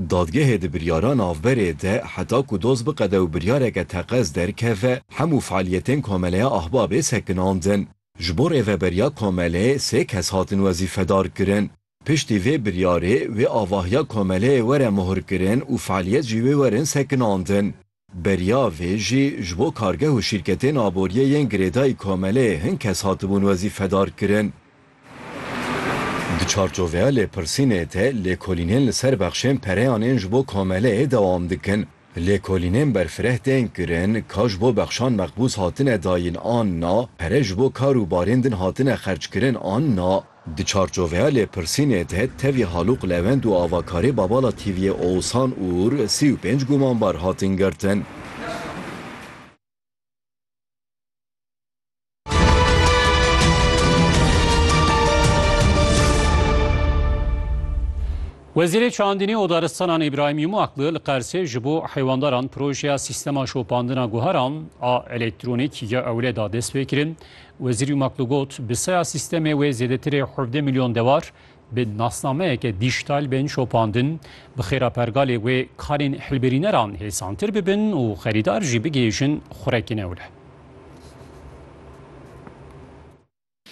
Dadgehê di biryara navberê de heta ku doz biqede û biryareke teqez derkeve, hemû fealiyetên Komeleya Ahbabê sekinandin. Ji bo rêveberiya komeleyê sê kes hatin wezîfedar kirin. Piştî vê biryarê wê avahiya komeleyê were muhirkirin û fealiyet jî wê werin sekinandin. Beriya vê jî ji bo kargeh û şîrketên aboriyê yên girêdayî komeleyê hin kes hatibûn wezîfedar kirin. Di çarçoveya lêpirsînê de lêkolînên li ser bexşên pereyan ên ji bo komeleyê dewam dikin. Lêkolînên berfireh tên kirin, ka ji bo bexşan meqbûz hatine dayîn an na, pere ji bo kar û barên din hatine xerckirin an na. Di çarçoveya lêpirsînê de tevî Halûq Lewend û avakarê Babala TV'yê Oğuzhan Uğur sî û pênc gumanbar hatin girtin. Wezîrê Çandinî û Daristanan Îbrahîm Yumaklı li Qersê ji bo heywandaran projeya sîstema şopandina guheran a elektronîk ya ewle da destpêkirin Wezîrî Maklu got, bi saya sîstemê wê zêdetirê hevdeh milyon dewar bi nasnameyeke dîjtal bên şopandin, bi xêra pergalê wê karên hilbirîneran hêsantir bibin û xerîdar jî bigihêjin xurekîn ew re.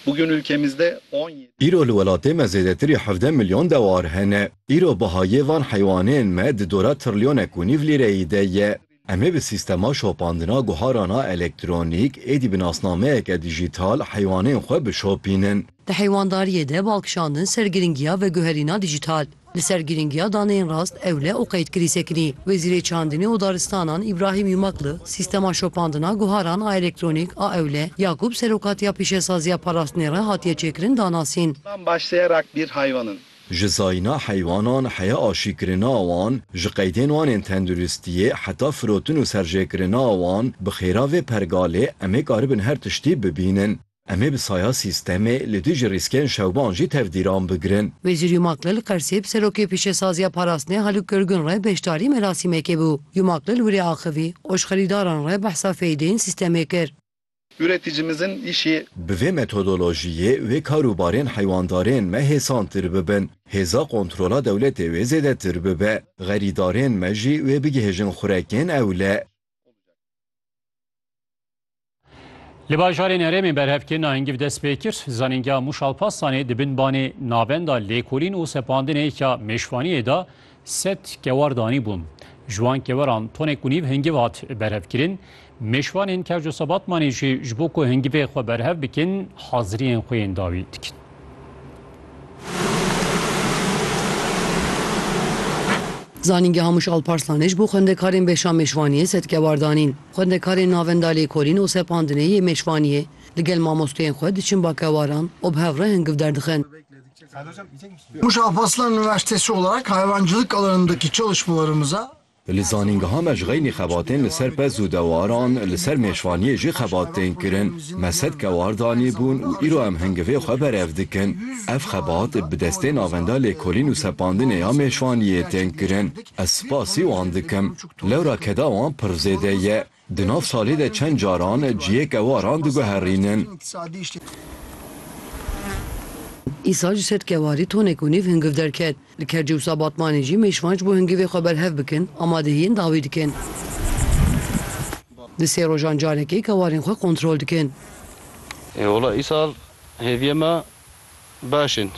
Bugün ülkemizde on yedi. Îro li welatê me zêdetirî hevdeh milyon dewar hene. Îro bihayê van heywanêyên me di dora trilyonek û nîv lîreyî de ye. Em ê bi sîstema şopandina guharan a elektronîk êdî bi nasnameyeke dîjîtal heywanên xwe bişopînin. Di heywandariyê de bal kişandin ser girîngiya veguherîna dîjîtal. Li ser girîngiya daneyên rast, ewle û qeydkirî sekinî, Wezîrê Çandinê û Daristanan Îbrahîm Yumakli sîstema şopandina guharan a elektronîk a ewle ya ku bi serokatiya Pîşesaziya Parastinê re hatiye çêkirin danasîn. Van baş sê rakbîr haywan in. Ji zayîna heywanan heya aşîkirina wan, ji qeydên wan ên tenduristiyê heta firotin û serjêkirina wan, bi xêra vê pergalê em ê karibin her tiştî bibînin. Em ê bi saya sîstemê li dijî rîskên şewban jî tevdîran bigrin. Wezîr Yumaklı li Qersê bi Serokê Pîşesaziya Parastinê Haluk Görgün re beşdarî merasîmekê bû. Yumaklı li wirê axivî, oşxerîdaran re behsa feydeên sîstemê kir. Ureticimizin îşi. Bi vê metodolojiyê wê kar û barên heywandarên me hêsantir bibin, hêza kontrola dewletê wê zêdetir bibe, xerîdarên me jî wê bigihêjin xurekên ewle. Li bajarên herêmê berhevkirina hingîv dest pê kir. Zanîngeha Mûş Alparslanê di bin banê Navenda Lêkolîn û Sepandinê ya Mêşvaniyê de Sed kewar danîbûn. Ji wan keweran tonek û nîv hingiv hat berhevkirin. Mêşvanên Kerco Sebatmanê jî ji bo ku hingivê xwe berhev bikin haziriyên xwe yên dawî dikin. Zanîngeha Miş Alparslanê ji bo xwendekarên beşa mêşvaniyê sed kewar danîn. Xwendekarên navenda lêkolîn û sepandinê yê mêşvaniyê li gel mamosteyên xwe diçin bakewaran û bi hev re hingiv derdixin. Muşaf Aslan Üniversitesi olarak hayvancılık alanındaki çalışmalarımıza, Li zanîngeha me ji xeynî xebatên li ser pez û dewaran, li ser mêşvaniyê jî xebat tên kirin. Me sed kewar danîbûn û îro em hingivê xwe berev dikin. Ev xebat bi destê navenda lêkolîn û sepandinê ya mêşvaniyê tên kirin. Ez spasî wan dikim. Lewra keda wan pir zêde ye. Di nav salê de çend caran cihêk kewaran diguherînin. Îsal ji ser kewarî tonek û nîv hingiv derket. Li Kercê û Sabatmanê jî mêşvan ji bo hingivê xwe berhev bikin amadehiyên dawî dikin. Di sê rojan carekê kewarên xwe kontrol dikin. Ê wela îsal hêviye me Baş in.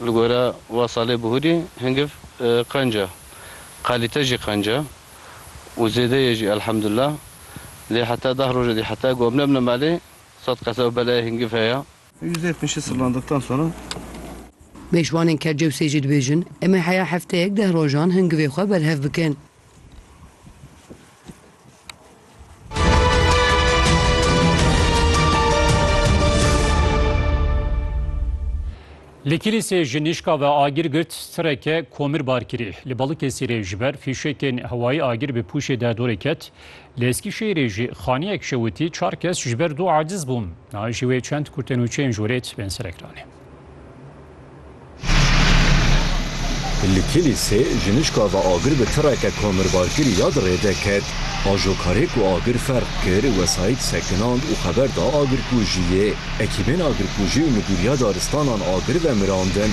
Li gora Wasalê Buhurî hingiv qenc e. Qalîte jî qenc e û zêde ye jî elhemdullah. Lê heta deh roj edî heta ku em nebine malê sed qese û belayê hingiv heye. Yüzde yetmişi sırlandıktan sonra. Mêşvanên Kercewsê jî dibêjin, Em ê heya hefteyek deh rojan hingivê xwe berhev bikin. Li Kîlîsê ji nîşka ve agir girt, sireke komir bar kirî. Li Balıkesirê ji ber fîşekên hewayî agir bi pûşê de dorê ket. Li Eskîşehîrê jî xaniyek şewitî, çar kes ji ber dû aciz bûn. Nayê ji wê çend kurtên û çên jorêt bên serekranê. Li Kîlîsê jinişka ve agir bi tireke komirbarkirî ya di rê de ket. Ajokarê ku agir ferq kir, wesayît sekinand û xeber da agirkujiyê. Ekîbên agirkujî û Midûriya Daristanan agir vemirandin.